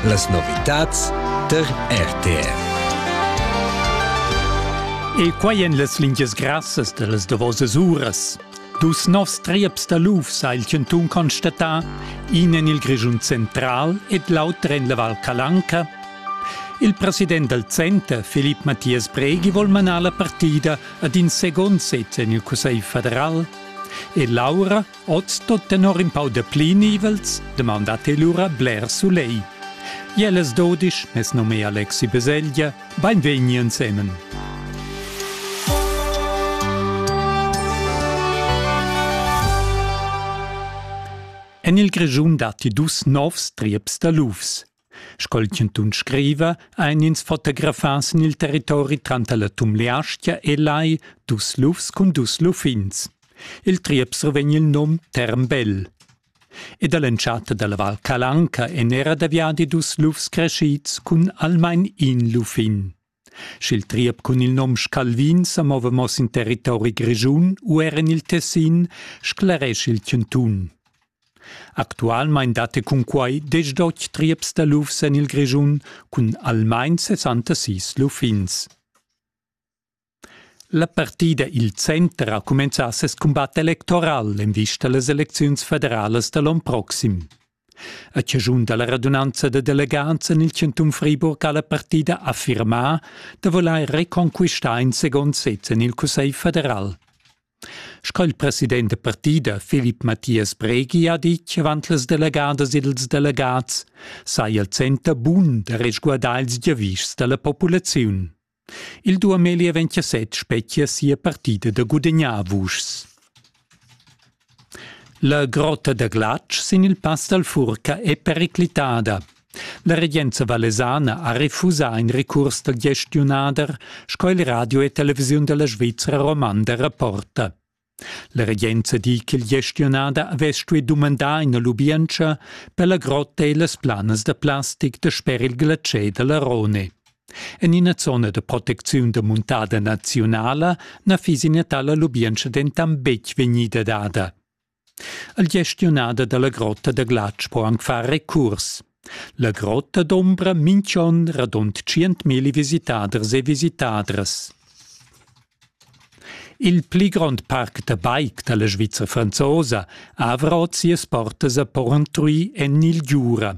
Las novitads tar RTR. E quai en las lingias grassas da las davosas uras. Dus novs trieps da lufs ha il chantun constatà, in en il Grischun central ed l'auter en la Val Calanca. Il president dal center, Filip Mathias Breghi, vuol manar la partida ad in second set en il Cussegl federal. E Laura, Oz tot tenor in pau de pli nivels demanda te lura bler sulei. Jeles dodisch, mes nome è Alexi Beseglia, beinvegni ensemen. En il Grischun datti dus novs trieps da lufs. Sco'l chantun scriva, ein ins fotografas en il territori tranter la Tumleastgia e Lai dus lufs cun dus luffins. Il triep survegn il num Termbell. Ed all'entschatta dalla Val Calanca en era da viadi dus lufs crescids cun almain in luffin. Sch'il triep cun il nom Scalvin sa mova mo sin territori grischun u er en il Tessin, scleresch il chantun. Actualmein datti cunquai desch dotg trieps da lufs en il Grischun cun almain 66 luffins. La partida Il Center ha cumenzà ses cumbat electoral en vista a las elecziuns federalas da l'onn proxim. A chaschun da la radunanza da delegants en il chantun Friburg ha la partida affirmà da vulair reconquistar in segund sez en il Cussegl federal. Sco il president da partida Philipp Matthias Bregi ha ditg avant las delegadas ed ils delegats, saja il center bun da resguardar ils giavischs da la populaziun. Il Duameli aventja set spetgia sia partida da gudagnar vuschs. La grotta da glatsch sin il pass dal Furca è periclitada. La regenza valesana ha refusà in recurs dal gestiunader, sco il radio e televisiun da la Svizra romanda rapporta. La regenza di ch'il gestionader havess stuì dumandar ina lubientscha per la grotta e las planas da plastic da sper il glatschè da la Rhone. En ina zona da protecziun da muntada naziunala na fiss ina tala lubientscha dentant betg vegnida dada. Il gestionader da la grotta da glatsch po anc far recurs. La grotta d'ombra minch'on radund tschientmilli visitaders e visitadras. Il pli grond parc da bike da la Svizra franzosa avra ot sias portas a Porrentruy en il Giura.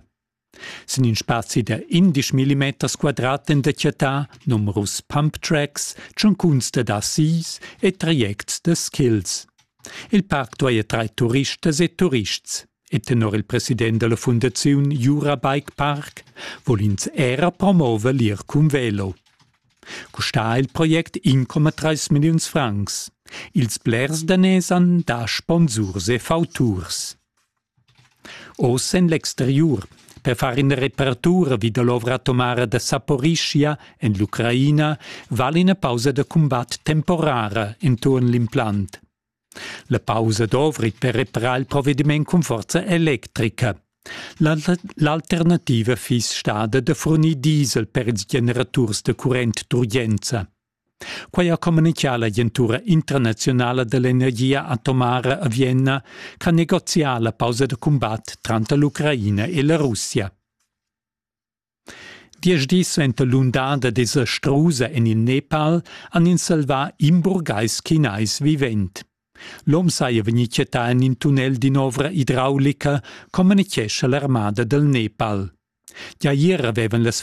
Sin in spazi da 11 mm quadrat en detgità numerus pump tracks, tschuncuns da dassis e trajects da skills. Il parc duaja trair turistas e turists. E tenor il president dalla fundaziun Jura Bike Park vul ins era promover l'ir cun velo. Custà il project 1,3 milliuns francs. Ils blers daners han da sponsurs e fauturs. Oz en l'exteriur, per far ina reparatura vi dall'ovra atomara da Saporischia en l'Ucraina, val ina pausa da cumbat temporara enturn l'implant. La pausa dovri per reparar il provediment cun forza electrica. L'alternativa fiss stada da furnir diesel per ils generaturs da current d'urgenza. Quai ha communitgà l'agentura internaziunala dell'energia atomara a Vienna ch'ha negozià la pausa da cumbat tranter l'Ucraina e la Russia. Diesch dis suenter l'undada desastrusa en il Nepal han ins salvà in burgais chinais vivent. L'om saja vegnì chattà en in tunnel d'in'ovra idraulica, communitgescha l'armada dal Nepal. Gia ier avevan las